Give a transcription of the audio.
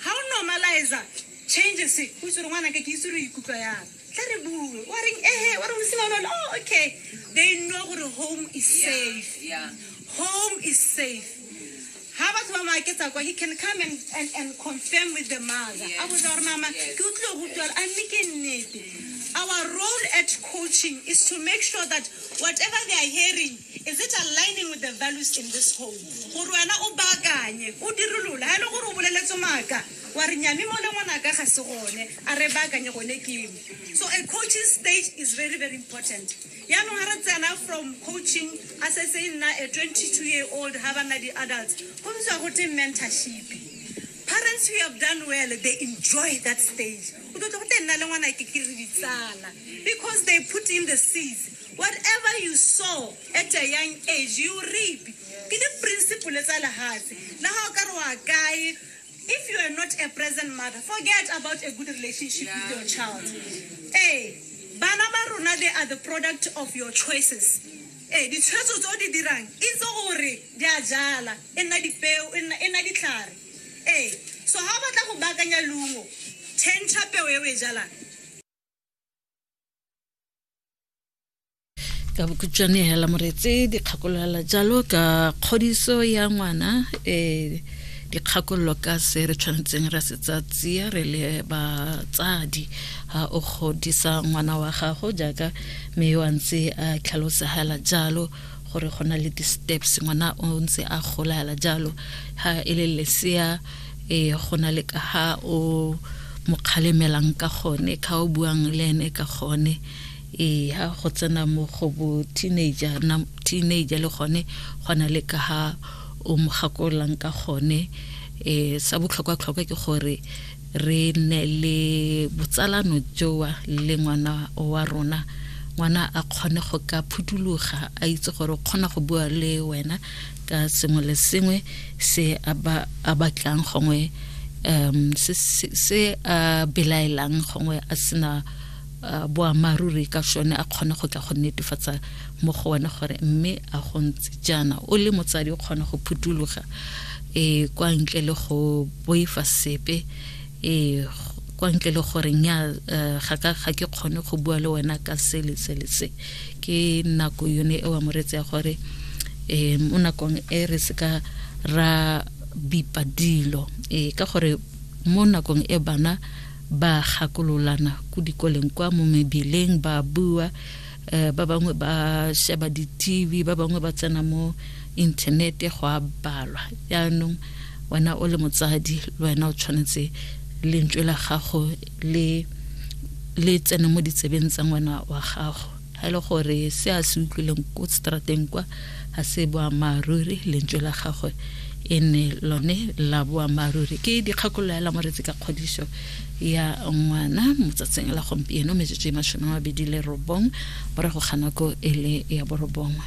ga o normaliza changes o itse gore ngwana ka ke itse re ikutlwa yang tla re bue wa reng ehe wa re mosima lone oh okay they know gore home is safe yeah. home is safe ha batho ba maaketsa kwa he can come and, and, and confirm with the mother a botsa gore mama ke o tlile go utlwa a mme ke nnete our role at coaching is to make sure that whatever they are hearing Is it aligning with the values in this home? Gore wena o baakanye, o dirolole. Ha e le gore o boleletse maaka, wa re nyami mole ngwanaka ga se gone, a re baakanye gone keng. So a coaching stage is very very important. Yaanong ha re tsena from coaching a se se nna a 22 year old ha ba nna di-adults, go bitswa go teng mentorship. Parents who have done well, they enjoy that stage. O tlo tlo go teng nna le ngwana ke ke re ditsala because they put in the seeds. whatever you sow at a young age you reap ke di-principle tsa lehatshe le ga o ka re wa kae if you are not a present mother forget about a good relationship yeah. with your child ee bana ba rona they are the product of your choices ee ditshwetso tse o di dirang itse gore di a jala e nna dipeo e nna e ditlhare ee so ga o batla go baakanya leungo tšhentšha peo e o e jalang ka bokhutšwane hela moretse dikgakologela jalo ka kgodiso ya ngwana um dikgakololo ka se re tshwanetseng ra se tsatsia re le batsadi ha o godisa ngwana wa gago jaaka mme yo a ntse a tlhalosegela jalo gore go na le di-steps ngwana o ntse a gola hela jalo ha e le lesea e go na le ka ha o mo kgalemelang ka gone ka o buang le ene ka gone e ha go tsena mo go bo teenager na teenager le gone go na le ka ha o mo gakolang ka gone e sa botlhokwa tlhokwa ke gore re ne le botsalano joa le ngwana wa rona ngwana a kgone go ka phutuluga a itse gore o kgona go bua le wena ka sengwe le sengwe se a ba a batlang gongwe um se se a belaelang gongwe a sena boamaruri ka sone a kgone go tla go netefatsa mo go wena gore mme a go ntse jaana o le motsadi o kgona go phuthuloga e kwa ntle le go boifa sepe e kwa ntle le gore nya eh, ga ka ga ke kgone go bua le wena ka se le se le se ke nako yone e wa moretse ya gore eh mo nakong e re se ka ra bipa dilo eh ka gore mo nakong e bana ba gakololana ku dikoleng kwa mo mebileng ba bua um ba bangwe ba sheba di-tv ba bangwe ba tsena mo inthanete go a balwa jaanong wena o le motsadi le wena o tshwanetse lentswe la gago le le tsene mo ditsebeng tsa ngwana wa gago ga e le gore se a se utlwileng ko strateng kwa ga se boammaaruri lentswe la gagwe e ne lone la boammaaruri ke dikgakololo ya lamoretsi ka kgodiso ya ngwana mo tsatsing la gompieno metsotso e masome a mabedi le robong morago ga nako e le ya borobongwe